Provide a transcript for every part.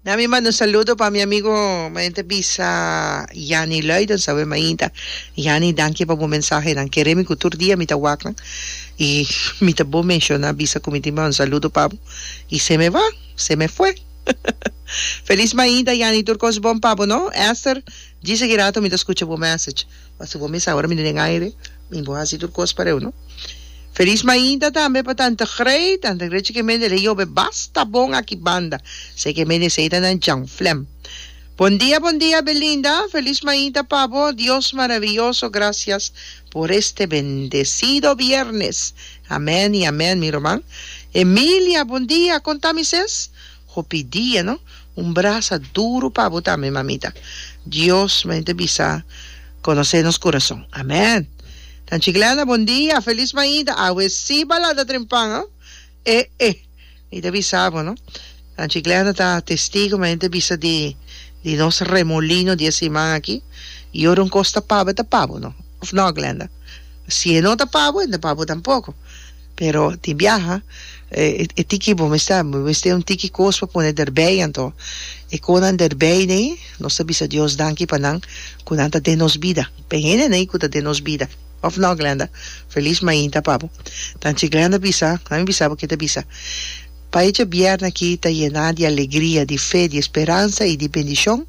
Na mi manda un saludo pa mi amigo mayen ta bisa Yani Luiden sabe mainta Yani danki pa bo mensahenan kere mi ku tur dia mi ta wak nan i mi ta bo menshona bisa ku mi tin manda un saludo pa bo i se me va se me fue Felis mainta Yani tur kos bon pa bo no Ester djis aki rato mi ta skucha bo message. Pasobra bo mester awor mi ta den aire, mi bo hasi tur kos pa reu, no? Felis mainta tambe pa tante Grey, tante Grey chike mende lei yobe basta bon aki banda, seke mende esei ta nan chanflem. Bon dia bon dia Belinda, felis mainta pa bo, Dios maraviyoso gracias por este bendecido viernes, amen y amen mi ruman. Emilia, bon dia, kon ta mi ses? Hopi dia no. Un brasa duru pa bo tambe mamita. Dios main ta bisa conoce nos corazon. Amen. Nan Chiclana bon dia. Feliz maida. Awe si balada dren pan oh. E e. Mi ta bisa bo no. Nan Chiclana ta testigo main ta bisa di di nos remolino di e siman aki. Y ora un cos ta pa bo e ta pa bo no. Of no Glenda. Si e no ta pa bo e no ta pa bo tampoco. Pero di biaha e tiki bo mester bo mester un tiki kos pa pone derbei anto e kos nan derbei nei nos ta bisa Dios danki pa nan ku nan ta den nos bida p'e hende nei ku ta den nos bida of no Glenda felis mainta pa bo tanchi Glenda bisa nan mi bisa bo ke ta bisa pa echa bierne aki ta yena di alegria di fe di esperansa i di bendishon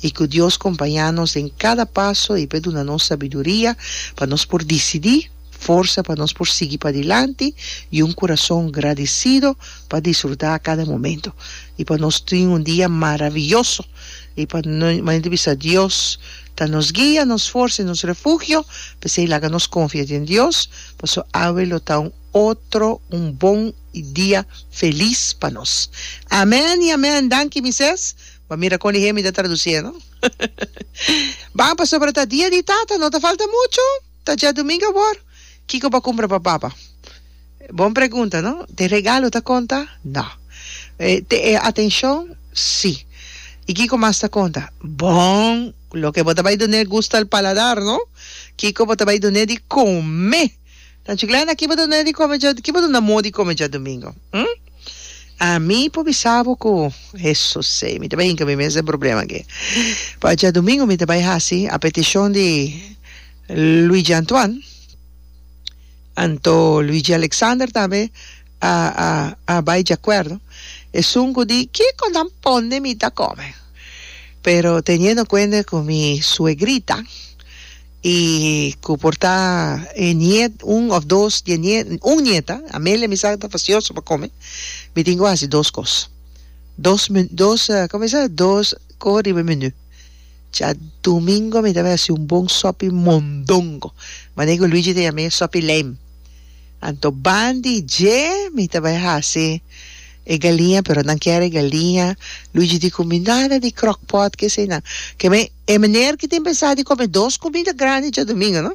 i ku Dios kompaña nos den kada paso i p'e duna nos sabiduria pa nos por disidi forsa pa nos por sigui padilanti i un kurason gradisido pa disfrutá kada momentu i pa nos tin un dia maravioso i pa manera di bisa Dios ta nos guia, nos forsa i nos refugio p'esei laga nos konfia den Dios paso awe lo ta un otro un bon i dia felis pa nos. Amèn i amèn! Danki Misés. Bo a mira kon di hemi ta tradusié no? Bon, pasobra ta dia di Tata no ta falta muchu. Ta dja domingo awor? Kiko bo a cumpra pa baba? Bon pregunta, no? T'e regalo ta conta? No. T'e atencion? Sí. Y kiko mas ta conta? Bon! Loke bo ta bay dun'e gusta el paladar, no? Kiko bo ta bay dun'e di come? Tan chiclana, ki bo ta dun'e di come dja, ki bo duna mo di come djadomingo? Hm? Ami por bisa bo cu, Hesusey, mi ta bay hinca mi mes den problema aki. Pa djadumingo mi ta bay haci, a peticion di Luigi Antoine, anto Luigi Alexander tambe a, a, a bay djacuerdo, esun cu di kico nan ponde mi ta come. Pero teniendo cuende cu mi suegrita, I ku por ta e niet, un òf dos di e niet, un niet a, Amelia mi sa ku ta fasioso pa kome, mi tin ku hasi dos kos. Dos me, dos, kòm mi sa, dos kos riba e menú. Djadùmingo mi tabata hasi un bon sòpi mondongo, mané ku Luigi ta yam'é sòpi leim. Anto ban di dje mi ta bai hasi e galiña, pero nan kier e galiña. Luigi di ku mi, Nada di kròkpòt, ke eseinan. Ke mi. E meneer ki tin pensá di come dos comida grandi djadomingo no?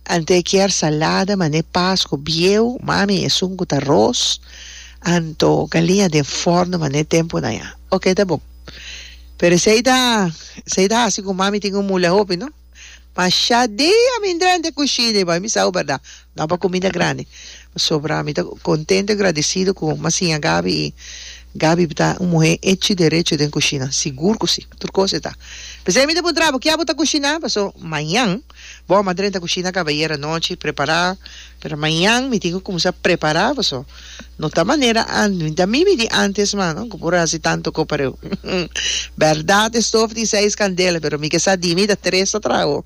Ante e kier salada mané paas cu bieu, mami esun cu ta ros, anto galiña den forno mané temponan ya. Ok ta bon. Pero esei ta esei ta haci cu mami tin un mula hopi no? Mashá dia mi drente cushina y bai mi sa awo berdad. Nan pa cuminda grandi. Pasobra mi ta contento y gradecido cu mas siña Gaby y Gaby ta un muhe hecho y derecho den cushina. Sigur cu si. Tur cos e ta. P'esei mi ta puntra abo, kia bo ta cushina? Paso mañan bo a madren ta cushina cabayer anochi, prepara. Pero mañan mi tin cu cuminsa prepara paso no ta manera an, mi ta mimi di antes mas, no? Cu por a haci tanto co pa reu. Berdad e stof tin seis candela, pero mi ke sa di mi ta tres ta traha awo.